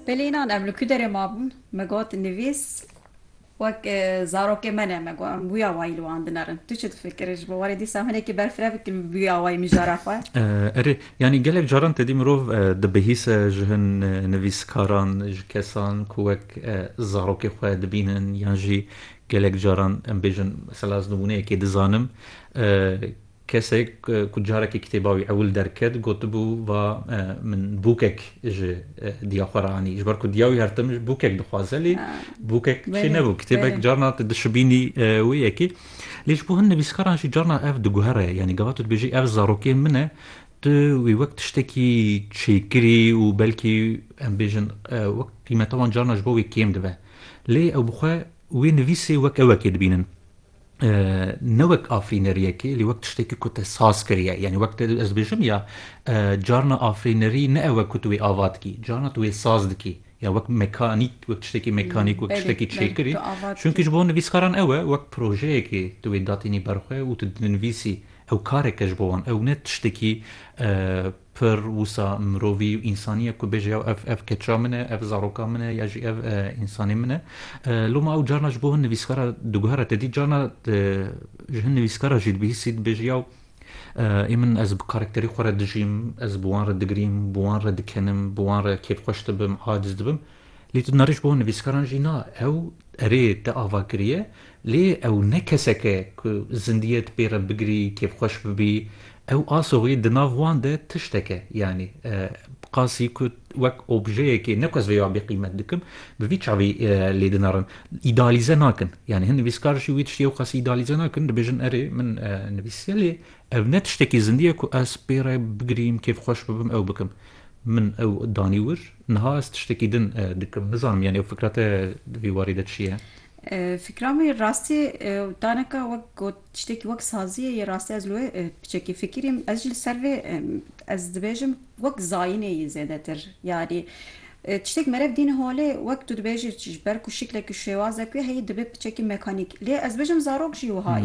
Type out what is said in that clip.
Belê înan em li ku derê mabûn, me got nivîs wek zarokê me ne, me got em bûya wayî li wan dinerin. Tu çi difikirî ji bo warê dîsa em hinekî berfireh bikin bi bûya wayî mijara xwe? Erê, yanî gelek caran tedî mirov dibihîse ji hin nivîskaran, ji kesan ku wek zarokê xwe dibînin yan jî gelek caran em bêjin mesela ez nimûneyekê dizanim, Kesek ku carekê kitêba wî ewil derket gotibû va min bûkek ji diya xwe re anî. Ji ber ku diya wî her tim bûkek dixwaze lê bûkek çê nebû. Kitêbek carna tu dişibînî wê yekê. Lê ji bo hin nivîskaran jî carna ev diguhere. Yanî gava tu dibêjî ev zarokê min e, tu wî wek tiştekî çêkirî û belkî em bêjin wek qîmeta wan carna ji bo wê kêm dibe. Lê ew bi xwe wê nivîsê wek ewekê dibînin. ne wek afirîneriyekê lê wek tiştekî ku te saz kiriye yanî wek te ez dibêjim ya carna afirînerî ne ew e ku tu wê ava dikî carna tu wê saz dikî ya wek mekanîk wek tiştekî mekanîk wek tiştekî çêkirî çunkî ji bo nivîskaran ew e wek projeyekê tu wê datînî ber xwe û tu dinivîsî ew kareke ji bo wan ew ne tiştekî Pir wisa mirovî û însaniyek ku bêje ya ev ev keça min e, ev zaroka min e ya jî ev însanê min e. Lo ma ew carna ji bo hin nivîskara diguhere te dî carna ji hin nivîskara jî dibihîsî dibêje yaw ê min ez bi karakterê xwe re dijîm, ez bi wan re digirîm, bi wan re dikenim, bi wan re kêfxweş dibim, aciz dibim. Lê tu nariş bo nivîskaran jî na ew erê te ava kiriye lê ew ne kesek e ku zindiyê ti pê re bigirî kêfxweş bibî ew asoxî di nav wan de tiştek e yanî bi qasî ku wek objeyekê ne ku ez vê ya bêqîmet dikim bi vî çavî lê dinarin îdealîze nakin yanî hin nivîskar jî wî tiştî ew qasî îdealîze nakin dibêjin erê min nivîsiye lê ev ne tiştekî zindî ye ku ez pê re bigirîm kêfxweş bibim ew bikim. Min ew danî wir. Niha ez tiştekî din dikim. Nizanim yanî ew fikra te di vî warî de çi ye? Fikra me yê rastî û tanika wek got tiştekî wek sazî ye. Yê rastî ez li wê piçekî fikirîm. Ez jî li ser vê ez dibêjim wek zayînê yê zêdetir. Yanî tiştek merev dîn holê wek tu dibêjî ji ber ku şiklek û şêwazek wê heyî dibe piçekî mekanîk. Lê ez dibêjim zarok jî wiha ye.